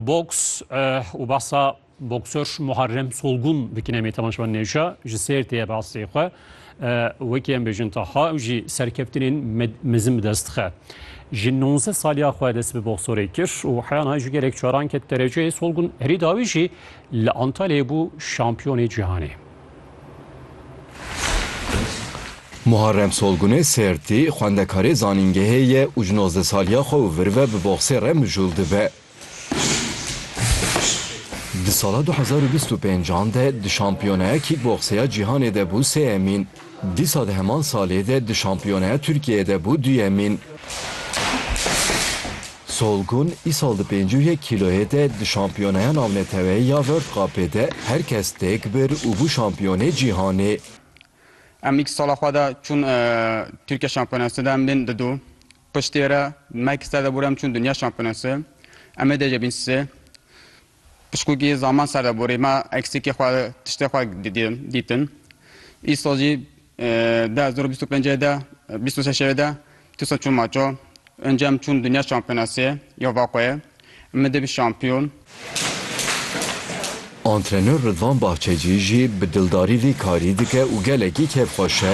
Boks û behsa boksör Muharrem Solgun dikin em ê temaşevan nêşa ji sêr tê behsê xwe wekî em bêjin taha ew jî serkeftinên mezin bi dest dixe. Ji 19 saliya xwe dest bi boksorê kir û heya niha ji gelek caran ket dereceyê Solgun herî dawî jî li Antalyayê bû şampiyonê cîhanê. Muharrem Solgunê sêrtî xwendekarê zanîngehê ye û ji nozdeh saliya xwe û vir ve bi boksê re mijûl dibe. Di sala du hezar û bîst û pênc an de di şampiyoneya kîkboksê ya cîhanê de bû sêyemîn. Dîsa di heman salê de di şampiyoneya Tirkiyeyê de bû duyemîn. Solgun îsal di pêncî û yek kîloyê de di şampiyoneya navneteweyê ya World Cupê de her kes têk bir û bû şampiyonê cîhanê. Em nîk sala xwe de çûn Tirkiye şampiyonasê de em bên di du Piştî re Mike ser deborê em çûn Dinya Şampiyonası. Em ê dêje bîn sê. Pişkûkî zaman ser deborê me eksikê xwe tiştê xwe dîtin. Îsal jî di hezar û bîst û pêncê de bîst û sê şevê de dîsa çûm maço. Înca em çûn Dinya Şampiyonası ya Vakoyê. Em ê dê bin şampiyon. Antrenör Ridvan Bahçecî jî bi dildarî vî karî dike û gelekî kêfxweş e.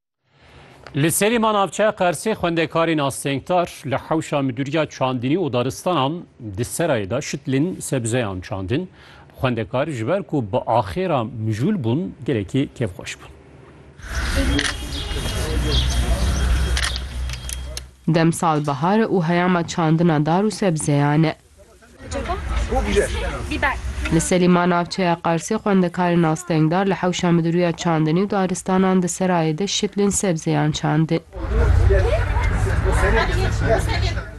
Li Serîma navçeya Qersê xwendekarên astengtar li hewşa midûriya çandinî û daristanan di serayê de şitlên sebzeyan çandin. Xwendekar ji ber ku bi axêra mijûl bûn gelekî kêfxweş bûn. Demsal bahar e û heyama çandina dar û sebzeyan e. Li Selîma navçeya Qarsê xwendekarên astengdar li hewşa midûriya çandinî û daristanan di serayê de şitlên sebzeyan çandin.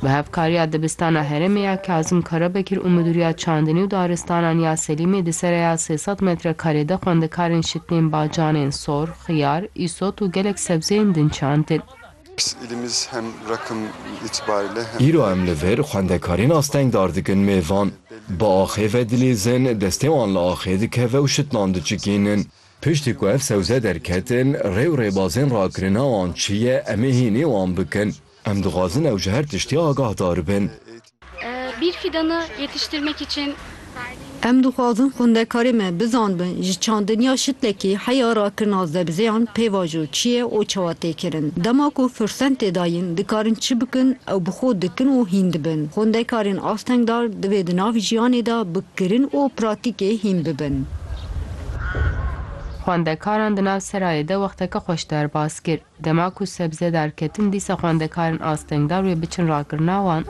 Bi hevkariya Dibistana Herêmê ya Kazim Karabekir û midûriya çandinî û daristanan ya Selîmê di seraya sê sed metrekarê de xwendekarên şitlên bacanên, sor, xiyar, îsot û gelek sebzeyên din çandin. Îro em li vir xwendekarên astengdar dikin mêvan. Bi axê ve dilîzin, destê wan li axê dikeve û şitnan diçikînin. Piştî ku ev sewze derketin, rê û rêbazên rakirina wan çi ye, em ê hînî wan bikin. Em dixwazin ew ji her tiştî agahdar bin. Bir fidanı yetiştirmek için. Em dixwazin xwindekarê me bizanbin ji çandin ya şitlekî heya rakirina zebzeyan pêvajo çi ye û çawa tê kirin. Dema ku firsen tê dayîn dikarin çi bikin ew bi xwe dikin û hîn dibin. Xwindekarên astengdar divê di nav jiyanê de bi kirin û pratîkê hîn bibin. Xwendekaran di nav serayê de wexteke xweş derbas kir. Dema ku sebze derketin dîsa xwendekarin astengdar wê biçin rakirina wan.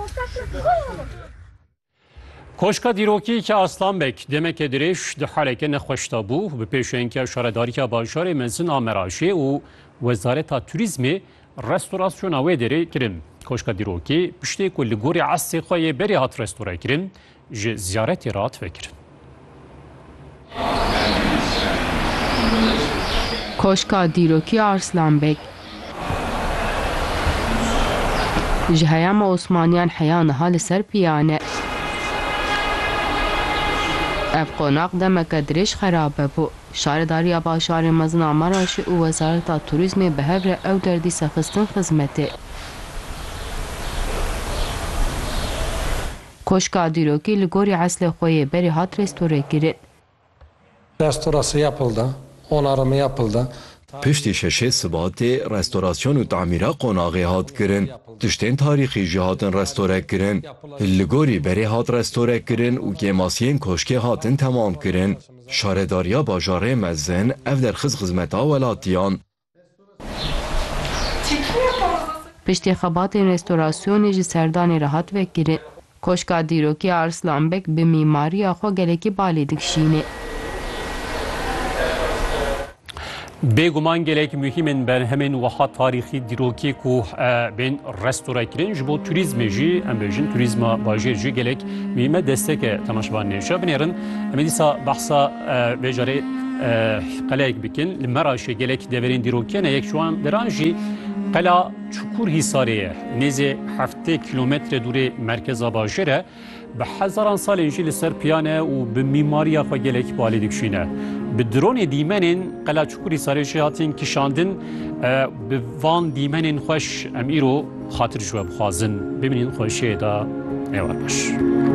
Koşka Dîrokîyeke Aslambek demeke dirêj di haleke nexweş de bû. Bi pêşengiya Şaredariya Bajarê Mezin a Meraşê û Wezareta Turîzmê restorasyona wê derê kirin. Koşka Dîrokî piştê ku li gorî estê xwe yê berê hat restorekirin, Ji ziyaretê re hat vekirin. Koşka Dîrokî Arslanbeg ji heyama Osmaniyan heya niha li ser piyan e. Ev qonak demeke dirêj xerabe bû. Şaredariya Bajarê Mezin a Meraşê û Wezareta Turîzmê bi hev re ew der dîsa xistin xizmetê. Koşka dîrokî li gorî eslê xwe yê berê hat restore-kirin. Restora Siyapil de, Onarima Yapil de tarîxî. Piştî şeşê sibatê restorasyon û tamîra qonaxê hat kirin. Tiştên tarîxî jî hatin restore-kirin. Li gorî berê hat restore-kirin û kêmasiyên koşkê hatin temamkirin. Şaredariya Bajarê Mezin ev derxist xizmeta welatiyan Piştî xebatên restorasyonê ji serdanê re hat vekirin. Koşka Dîrokî ya Arslan Beg bi mîmariya xwe gelekî balê dikşîne. Bêguman gelek muhîm in berhemên wiha tarîxî dîrokê ku bên restora kirin ji bo turîzmê jî em bêjin turîzma bajêr jî gelek muhîme desteke temaşevanê. Şa binêrin em ê dîsa behsa vê carê gelek qeleyek bikin. Li Meraşê gelek deverên dîrokî ne, yek ji wan deran jî qela Çukur Hîsarê ye. Nêzê heftê kîlometre dûrê merkeza bajêr e. Bi hezaran salên jî li ser piyan e û bi mîmariya xwe gelek balê dikişîne. Bi dronê dîmenên qela Çukur Hîsarê jî hatin kişandin. Bi van dîmenên xweş em îro xatir ji we bixwazin. Bimînin xweşiyê da êwar baş.